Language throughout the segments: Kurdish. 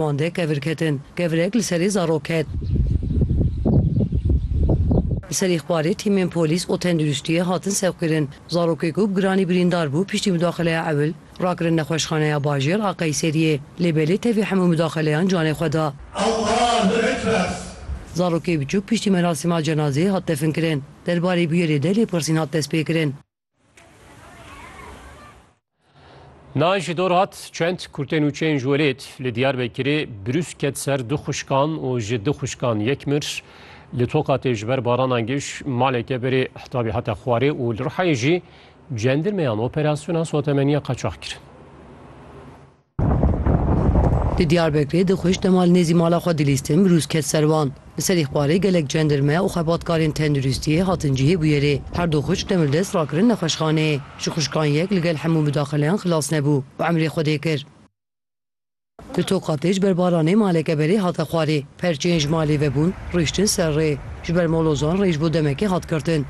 Bandek kevir ketin. Kevirek li serê zarok ket. Li serê xwarê tîmên polîs û tenduristiyê hatin sevkirin. Zarokê ku bi giranî birîndar bû piştî mudaxileya ewil rakirin nexweşxaneya bajêr a Qeyseriyê. Lê belê tevî hemû mudaxileyan canê xwe da. Zarokê biçûk piştî merasîma cenazeyê hat definkirin. Derbarê bûyerê de lêpirsîn hat destpêkirin. Nayîn ji dor hat çend kurtên û çên ji welêt li Diyarbekirê birûs ket ser du xuşkan û ji du xuşkan yek mir. Li Tokatê ji ber barana giş maleke berê hitabî hate xwarê û li Rihayê jî cendirmeyan operasyona sotemeniya qaçax kirin. Di Diyarbekirê di xwişt demal nêzî mala xwe dilîstin bi rûz ket ser wan. Li ser îxbarê gelek cendirme û xebatkarên tenduristiyê hatin cihê bûyerê. Her du xwişk demir dest rakirin nexweşxaneyê. Ji xwişkan yek li gel hemû midaxileyan xilas nebû û emrê xwedê kir. Li Tokatê ji ber baranê maleke berê hate xwarê. Perçên ji malê vebûn rûiştin ser rê. Ji ber molozan rê ji bo demekê hat girtin.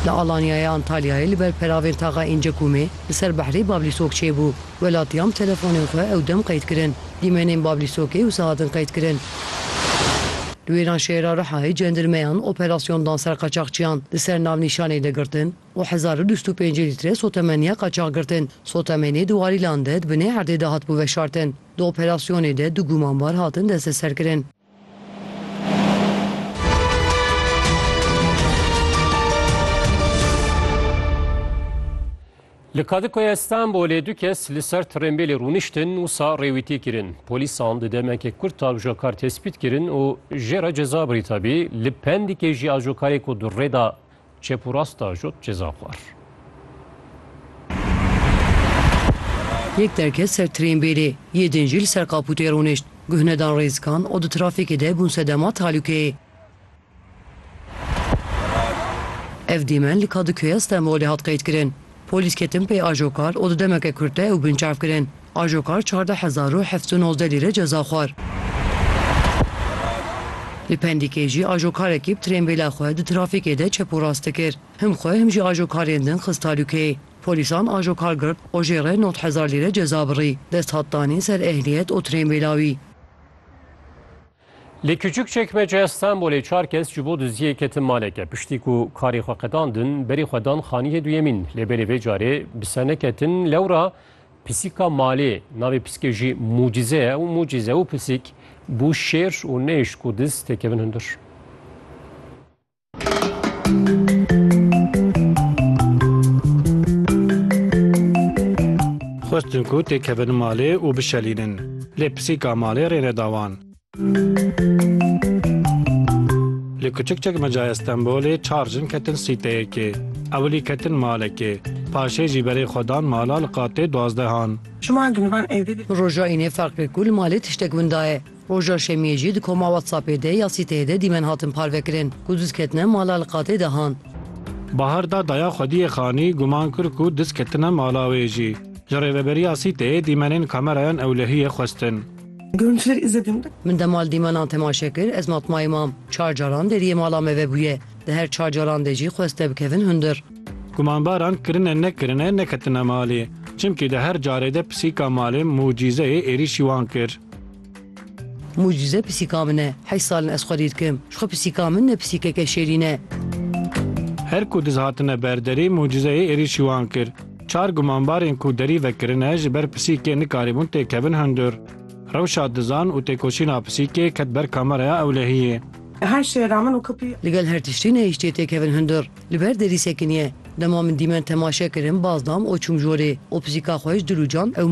Li Alanyayê Antalyayê li ber peravên taxa Încekumê li ser behrê Bablîsok çêbû. Welatiyan bi telefonên xwe ew dem qeyd kirin. Dîmenên Bablîsokê wisa hatin qeyd kirin. Li wêran şehra Rihayê cendirmeyan operasyon dan ser qaçaxçiyan li ser navnîşanê de girtin û hezar û du sed û pêncî lître sotemeniya qaçax girtin. Sotemenê di warîlan de di binê erdê de hatibû veşartin. Di operasyonê de du gumanbar hatin desteserkirin. Li Kadıköyê Stenbolê du kes li ser trênbêlê rûniştin wisa rêwîtî kirin. Polîsan di demeke kurt ajokar tespît kirin û jê re ceza birî tabî li Pendîkê jî ajokarê ku di rê de Çep û rast da jot ceza xwar. Yek derket ser trên bêrê, yê din jî li ser kapûtê rûnişt. Guh nedan rêzikan û di trafîkê de bûn sedema tehlûkeyê. Ev dîmen li Kadıköy'a Stenbolê hat qeydkirin. Polîs ketin pê ajokar û di demeke kurt de ew binçav kirin. Ajokar çardeh hezar û heft û nozdeh lîre ceza xwar. Li Pendîkê jî ajokarekî bi trênbêla xwe di trafîkê de çep û rast dikir. Him xwe him jî ajokarên din xist talûkeyê. Polîsan ajokar girt û jê re nod hezar lîre ceza birî. Dest hat danîn ser ehliyet û trênbêla wî. Li Kiçûkçekmece ya Stenbolê çar kes ji bo duziyê ketin maleke. Piştî ku karê xwe qedandin, berî xwe dan xaniyê duyemîn. Lê belê vê carê bi ser neketin. Lewra pisîka malê, navê pisîkê jî Mucize ye û Mucize û pisîk bû şêr û nehişt ku diz têkevin hundir. Xwestin ku têkevin malê û bişelînin. Lê pisîka malê rê neda wan. Li Kuçik Çekmecayê Stenbolê çar jin ketin sîteyekê. Ewilî ketin malekê. Paşê jî berê xwe dan mala li qatê duazdehan. Roja Înê ferq kir ku li malê tiştek winda ye. Roja şemiyê jî di koma WhatsAppê de ya sîteyê de dîmen hatin parvekirin ku diz ketine mala li qatê de han. Bahar da daya xwediyê Xanî guman kir ku diz ketine mala wê jî. Ji rêveberiya sîteyê dîmenên kamerayan ewlehiyê xwestin. Görüntüleri izledim. Min de mal dîmenan temaşe kir, ez matmayê mam. Çar caran deriyê mala me vebûye. Di her çar caran de jî xwest te bikevin hundir. Gumanbaran kirine nekirine neketine malê. Çimkî di her carê de pisîka malê mucîzeyê êrîşî wan kir. Mucîze pisîka min e. Heşt sal in ez xwe dî dikim. Ji xwe pisîka min ne pisîkeke şêrîn e. Her ku diz hatine ber derî mucîzeyê êrîşî wan kir. Çar gumanbarên ku derî vekirine ji ber pisîkê nikarîbûn têkevin hundir. Rewşa dizan û têkoşîna pisîkê ket ber kameraya ewlehiyê. Li gel her tiştî nehiştiye têkevin hundir. Li ber derî sekiniye. Dema min dîmen temaşe kirin baz dam û çûm jorê. O pisîka xwe ji dil û cam ew